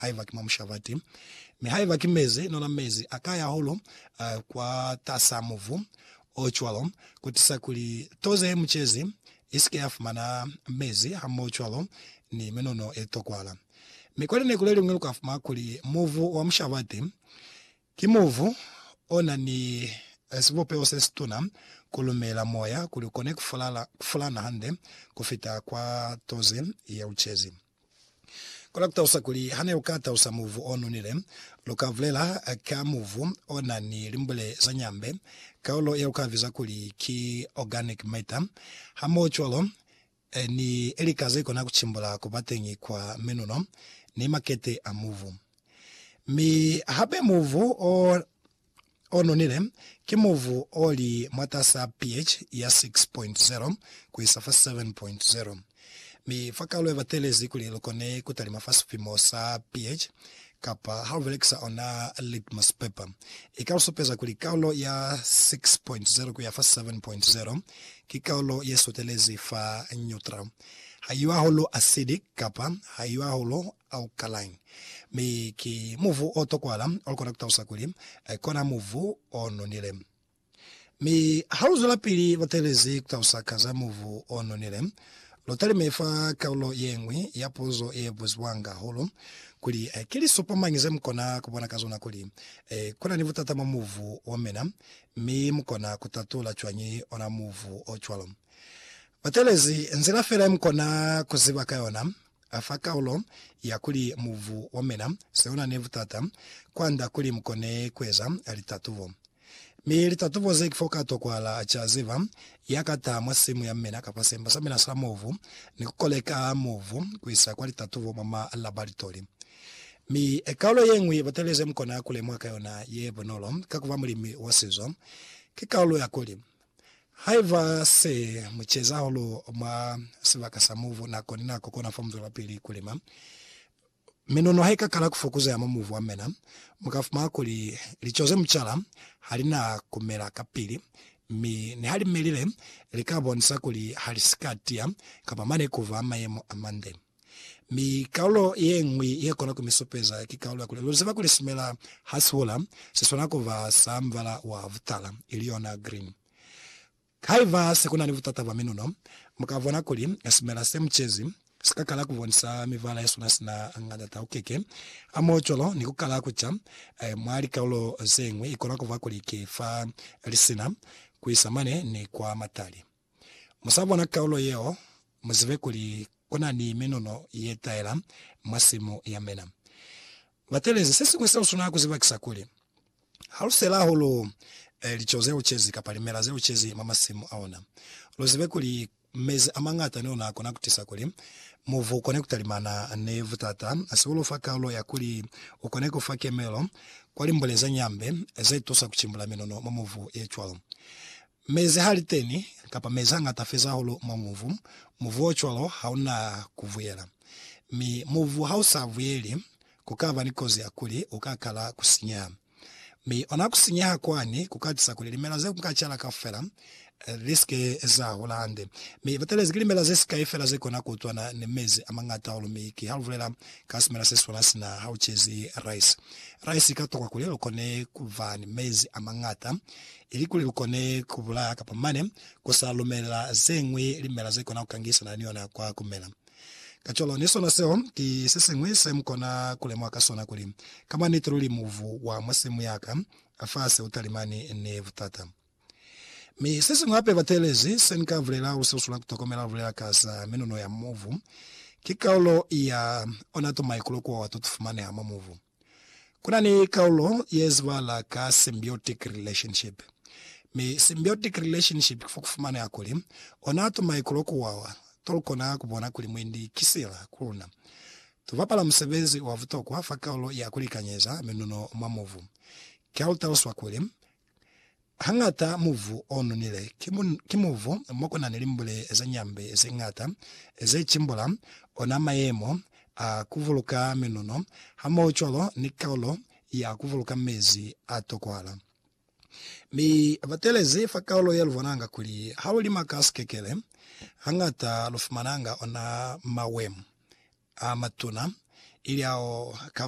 haiba ki mwa mushabati. Mi haiba ki mezi, nona mezi a ka ya hahulu kwatas'a mubu o cwalo, kutiisa kuli toze ye mucezi i si ke ya fumana mezi hamohocwalo ni minono ye tokwala. Mi kwa lineku leliñwi lu ka fumana kuli mubu wa mushabati ki mubu o na ni sibupeho se situna ku lumela moya kuli u kone ku fulana hande ku fita kwa toze ya ucezi. Kola ku talusa kuli, ha ne lu ka talusa muvu o nonile, lu ka bulela ka muvu o na ni limbule za nyambe, kaulo ye lu ka biza kuli ki organic matter, hamohocwalo ni lika ze kona ku cimbula ku ba teñi kwa menuno ni makete a muvu. Mi hape muvu o. o nonile ki mubu o li mwatas'a pH ya 6.0 ku isa fa 7.0, mi fa kalo ya batelezi kuli lu kone ku talima fa sipimo sa pH, kapa ha lu belekisa ona litmus paper, i ka lu supeza kuli kalo ya 6.0 ku ya fa 7.0 ki kalo ye sutelezi fa neutral, ha i yo hahulu acidic kapa ha i yo hahulu alkaline, mi ki muvu o tokwala o kona ku talusa kuli ki ona muvu o nonile. Mi ha lu zwelapili lu teelezi ku talusa ka za muvu o nonile, lu talime fa kalulo ye ñwi ya puzo ye buzibwanga hahulu, kuli, Ki lisupo mañi ze mu kona ku bona ka zona kuli ku na ni butata mwa muvu wa mina, mi mu kona ku tatula cwañi ona muvu o cwalo? Ba teelezi nzila fela ye mu kona ku ziba ka yona. A fa kaulo ya kuli mubu wa mina se u na ni butata kwand'a kuli mu kone ku eza litatubo. Mi litatubo ze ki f'o ka tokwahala a ca ziba, ya ka taha mwa simu ya mina kapa semba sa mina sa mubu ni ku koleka mubu ku isa kwa litatubo mwa malabalitoli. Mi kaulo ye ñwi batali ze mu kona ku lemuha ka yona ye bunolo ka ku ba mulimi wa sizo, ki kaulo ya kuli Haiba se mu ceza hahulu mwa sibaka sa mubu nako ni nako kona fa mu zwelapili ku lima, minono ha i ka kala ku fokuzeha mwa mubu wa mina, mu ka fumana kuli lico ze mu cala ha li na ku mela kapili, mi niha li melile, li ka bonisa kuli ha li si ka tiya kapa mane ku ba mayemo a mande. Mi kaulo yeñwi yekona kumisupeza ki kaulo ya kuli, Luziba kuli simela hasihola siswana kuba sa mubala wa butala, ili yona green. Haiba sekunani butata bwa minuno, mukabona kuli simela semucezi sikakala kubonisa mibala yesona sina nganda taukeke hamoho cwalo ni kukala kuca mwa likaulo zeñwi. Ikona kuba kuli ki fa lisina kuisa mane ni kwa matali. Mu sa bona kaulo yeo, mu zibe kuli ku na ni minono ye taela mwa simu ya mina. Batelezi, se siñwi seo suna ku ziba ki sa kuli, ha lu sela hahulu lico ze ucezi kapa limela ze ucezi mwa masimu a ona, lu zibe kuli mezi a mañata ni ona a kona ku tisa kuli mubu kone ku talimana ni butata. Se u lu fa kaulo ya kuli u kone ku fa kemelo kwa limbule ze ñambe ze tusa ku cimbula minono mwa mubu ye cwalo. Mezi ha li teni, kapa mezi a ngata feza hahulu mwa muvu, muvu o cwalo ha u na ku vuyela. Mi muvu ha u sa vuyeli, ku ka ba ni kozi ya kuli u ka kala ku sinyeha. Mi ona ku sinyeha kwani ku ka tisa kuli limela ze ku nga cala kaufela li si ke za hula hande. Mi batelezi ki limela ze sikai fela ze kona ku utwana ni mezi a mangata hahulu. Mi ki ha lu bulela ka simela se si swana sina ha u cezi rice. Rice i ka tokwa kuli lu kone ku ba ni mezi a mangata ilikuli lu kone ku bulaha kapa mane ku sa lumela ze ñwi limela ze kona ku kangisana ni yona kwa ku mela. Kacwalo, ni sona seo ki se siñwi se mu kona ku lemuha ka sona kuli, ka mwa niti luli mubu wa mwa simu ya ka a fasi u talimani ni butata. Mi se siñwi hape bateelezi se ni ka bulela u susulo la ku tokomela lu bulela ka za minunu ya mubu, ki kaulo ya ona to maikulo ku wa to fumaneha mwa mubu. Ku na ni kaulo ye zibahala ka symbiotic relationship, mi symbiotic relationship ki fo ku fumaneha kuli ona tumaikulo ku wawa to lu kona ku bona kuli mwendi ki sila ku luna. Tu bapala musebezi wa butokwa fa kaulo ya ku likanyeza minuno mwa mubu. Ki ha lu taluswa kuli, Hañata muvu o nonile ki muvu mo ku na ni limbule za nyambe ze ñata ze cimbula ona mayemo a ku vuluka minuno hamohocwalo ni kaulo ya ku vuluka mezi a tokwala. Mi batelezi fa kaulo ye lu bonanga kuli ha lu lima ka sikekele, hañata lu fumananga ona mawemo a matuna ili ao ha ka